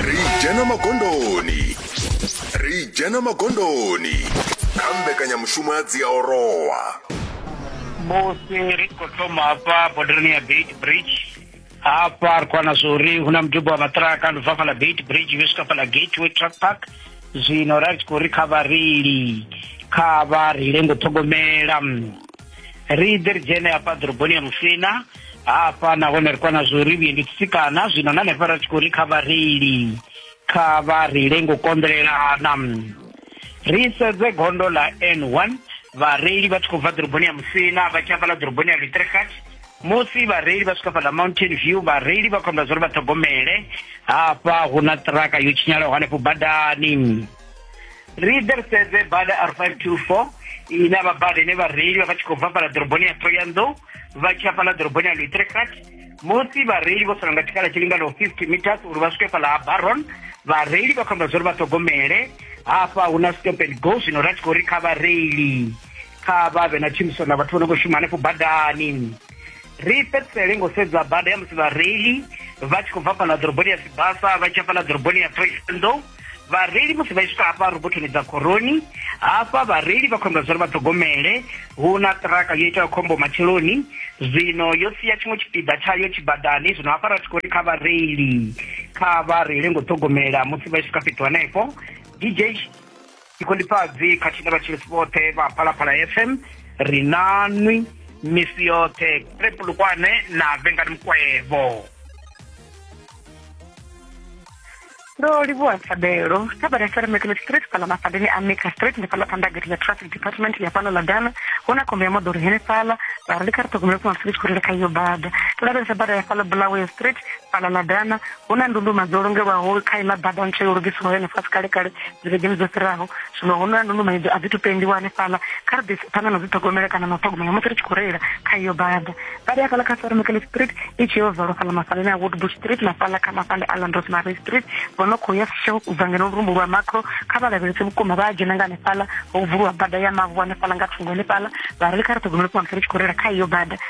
ri dzhena magondoni ri dzhena magondoni kha mbekanyamushumo ya dziaorowa musi ri khou thoma hafha bodereni ya beit bridge hafha ri khou wana zwa uri hu na mudubo wa maṱiraka ndi bva fhaḽa beit bridge vhe swika fhaḽa gateway truck park zwino ra tshi khou ri kha vhareili kha vha reile ngo ṱhogomela ri ḓe ri dzhene hafha ḓoroboni ya musina hafha nahone ri kwana zwo ri vhuendi tsikana zwino na hanefha ra tshi khou ri kha vhareili kha vha reile ngo konḓelelana ri sedze gondo ḽa n one vhareili vha tshi khou bva ḓoroboni ya musina vha tshi hafhaḽa ḓoroboni ya litrekat musi vhareili vha swika fhaḽa mountain view vhareili vha khombela zwa uri vha ṱhogomele hafha hu na ṱiraka yo tshinyalaho hanefho badani ri ḓe ri sedze bada r five two four ine vha bada ine vhareili vha vha tshi khou bva fhala ḓoroboni ya thoyandou vha tshi ya fhala ḓoroboni ya luitrekrat musi vhareili vho sala nga tshikhala tshi linganaho 50 meters uri vha swike fhala ha baron vhareili vha khou amba zwa uri vha ṱhogomele hafha hu na stop and go zwino ra tshi khou ri kha vhareili kha vha vhe na tshumisano na vhathu vho no khou shuma hanefho badani ri fhedzisele ngo sedza bada ya musi vhareili vha tshi khou bva fhala ḓoroboni ya sibasa vha tshi ya fhala ḓoroboni ya thoyandou vhareili musi vha swika hafha robothoni dza khoroni hafha vhareili vha khombela zwori vha ṱhogomele hu na ṱiraka yo itaho khombo matsheloni zwino yo sia tshiṅwe tshipiḓa tshayo tshibadani zwino hafha ra tshi khou ri kha vhareili kha vha reile ngo ṱhogomela musi vha swika fhethu hanefho dj ṱhingolifhadzi khathihi na vhatshilisi vhoṱhe vha phalaphala fm ri nanwi misi yoṱhe prepulukwane na vengani mukwevho ndo livhuwa thabelo kha bada seremekiḽo street fhala mafadeni a maker street ndi fhala phanḓa gate ḽa traffic department ya fhano ḽa dana hu na khombo ya moḓoro henefhala vha ri ndi kha ri ṱhogomele funa street khori ri kha iyo bada ndo lavhelesa bada ya fhala bulawayo street fhala ḽa dana hu na ndunduma dzo longelwaho kha iḽa bada ntswa yo lugisiwaho yone fhasi kale kale dzivhegeni dzo fhiraho zwino hu na ndunduma idzo a dzi tu pendiwa hanefhaḽa kha ri ḓise phanḓa na dzi ṱhogomela kana na u ṱhogomela musi ri tshi khou reila kha iyo bada bada ya fhaḽa kha sarmekele street i tshi yo valwa fhaḽa mafhaleni a woodbush street na fhaḽa kha mafhale a landros marie street vho no khou ya sho u bva ngeno lurumbu lwa macro kha vha lavhelese vhukuma vha a dzhena nga hanefhaḽa ho vuliwa bada ya mavu hanefhaḽa nga thungo hanefhaḽa vha ri kha ri ṱhogomele phanḓa musi ri tshi khou reila kha iyo bada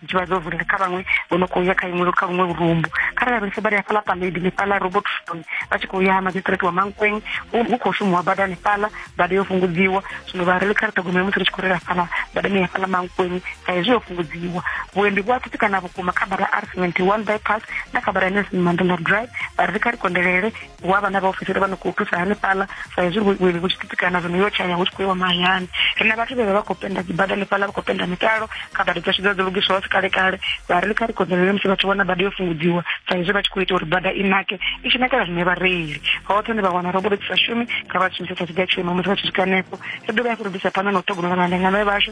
tshi vha zwo vulela kha vhaṅwe vho no khou ya kha iṅwe kha vhuṅwe vhurumbu kharali vha ri vha ri hafhaḽa paledi ḽifhaḽa robot stone vha tshi khou ya magistrate wa mankweng hu khou shumiwa bada ḽifhaḽa bada yo fhungudziwa zwino vha reli kha ri ṱhogomela musi ri tshi khou rela hafhaḽa badani ya hafhaḽa mankweng sa hezwi yo fhungudziwa vhuendi vhu a tsitsikana vhukuma kha bada r seventy one bypass na kha bada ya nelson mandela drive vha ri kha ri kondelele hu avha na vhaofisiri vha no khou thusa hanefhaḽa sa hezwi vhuendi vhu tshi titikana zwino yo tshaya hu tshi khou iwa mahayani ri na vhathu vhe vha vha khou penda dzibada hanefhaḽa vha khou penda mitalo kha bada dzashu dza dzo lugiswaho si kale kale vha ri kha ri konḓelele musi vhathu vhona bada yo fhungudziwa sa hezwi vha tshi khou ita uri bada i nake i tshi nakela zwine vhareili hoṱhe ni vha wana robolo dzi sa shumi kha vha shumise sa tshiga tshiimo musi vha tshi swika hanefho ri dovha hafhu ri ḓisa phanḓa na u ṱhogomela vhalengano vhashu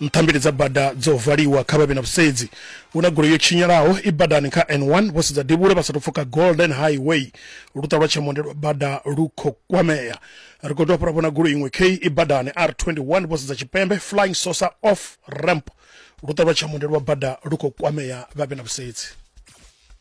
Nthambieli dza bada dzo valiwa, kha vha vhe na vhusedzi. Hu na goloi yo tshinyalaho i badani kha N1, vho sedza devhula vha sa tou pfuka Golden Highway. Luṱa lwa Tshemonde lwa bada lu khou kwamea. Ri khou dovha ra vhona goloi iṅwe khei i badani R21, vho sedza tshipembe, Flying Saucer off ramp. Luṱa lwa Tshemonde lwa bada lu khou kwamea, vha vhe na vhusedzi.